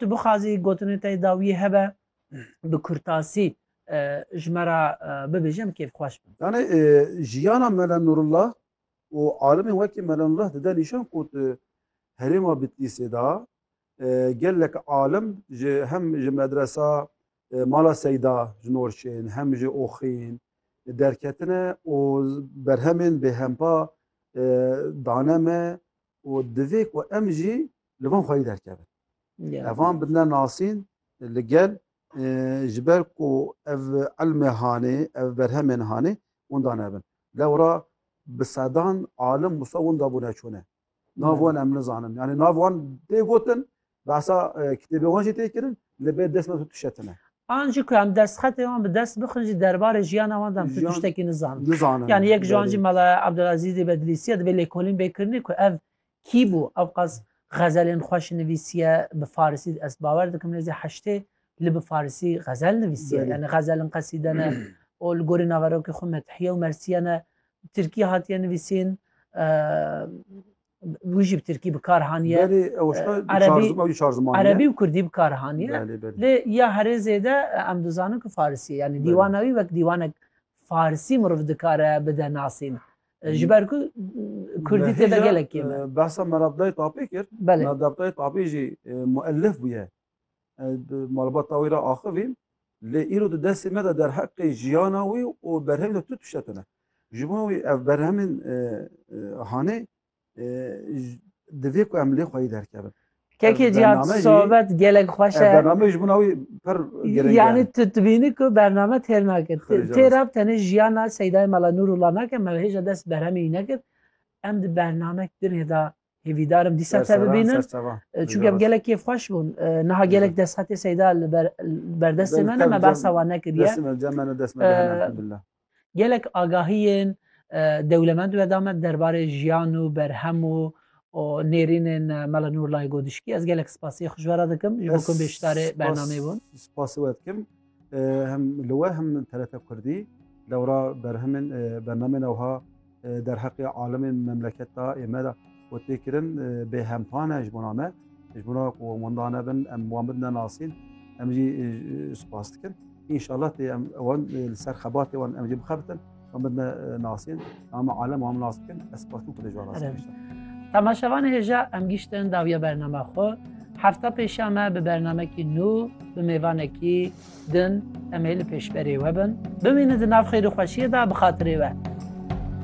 Tu bixwazî gotinê te yê dawiyê hebe bi kurtasî ji me re bibêje em kêfxweş bin. Yanê jiyana Mele Nurullah û alimên wekî Mele Nurullah dide nîşan ku tu herêma Bitlîsê de gelek alim ji hem ji medresa Mala Seyda ji Norçên hem ji Oxîn derketine û berhemên bêhempa dane me û divê ku em jî li van xweyî derkevin. Ev van bidine nasîn li gel ji ber ku ev ilmê hanê, ev berhemên hanê winda nebin. Lewra bi sedan alim wisa winda bûne çûne. Nav wan em nizanin. Yani nav wan tê gotin Behsa kitêbê wan jî tê kirin li bê dest me tu tişetine. An jî ku em destxetê wan bi dest bixin jî derbarê jiyana wan de em tu Jiyan- tiştekî nizanin. Nizanin. Yani yek ji wan jî Mela Abdulazîzê Bedlîsîye divê lêkolîn bê kirinê ku ev kî bû? Ew qas xezelên xweş nivîsîye bi farisî ez bawer dikim nêzî heştê li bi farisî xezel nivîsîye. Belê. Yani xezelin qesîde ne û li gorî naverokê xwe methiye û mersîye ne. Tirkî hatiye nivîsîn. wî jî bi tirkî bi kar haniye. Belê ew şta Erebî- çar zim- ew jî çar ziman e. Erebî û kurdî bi kar haniye. Belê belê. Lê ya herê zêde em dizanin ku farisî ye. Yanî Belê. dîwana wî wek dîwanek farisî mirov dikare bide nasîn. E, Ji ber ku e, kurdî Me tê de hêja, gelek kêm e. e, Behsa Merabdayê Tapê kir. Belê. Merabdayê Tapê jî e, muellif bûye. Malbata wî re axivîn lê îro di destê me de derheqê jiyana wî û berhevê de tu tişte tune. Ji bo wî ev berhemên e, e, hanê e, divê ku em lê xweyî derkevin. Kekê cihan sohbet gelek xweş e. Bername ji buna wî pir girêng Yani tu dibînî ku bername têr nakin. Tê re tenê jiyana Seydayê Mela Nûrullah nakin, me hêja dest berhemê wî nekir. Em di bername din hêda Hêvîdar im dîsa te bibînim. Çûk ev gelekê xweş bûn. Niha gelek desthate seyda li berdestê me ne me behsa wan nekiriye. Gelek agahiyên dewlemend weda me derbarê jiyan û berhem û nêrînên Mela Nûrlayê Godişkî. Ez gelek spasê xwe ji we re dikim ji bo ku bêşdarê bernameyê bûn. Spasê we dikim. Hem li we hem TRT Kurdî dewra berhemên bernamên ewha derheqê alimên memleket da ê me da û tê kirin bê hempane ji bona me ji bona ku wenda nebin em wan bin nenasîn em jî spas dikin. İnşallah tê em wan li ser xebatê wan em jî bixebitin. Em bedne nasên, em alem wan nas bikin, ez spas bikin xwedê ji wan Temaşevan hêja em giştin dawiya bername xwe. Hefta pêşa me bi bernamekî nû bi mêvanekî din em ê li pêşberê we bin. Bimînin di nav xêr û xweşiyê de bi xatirê we.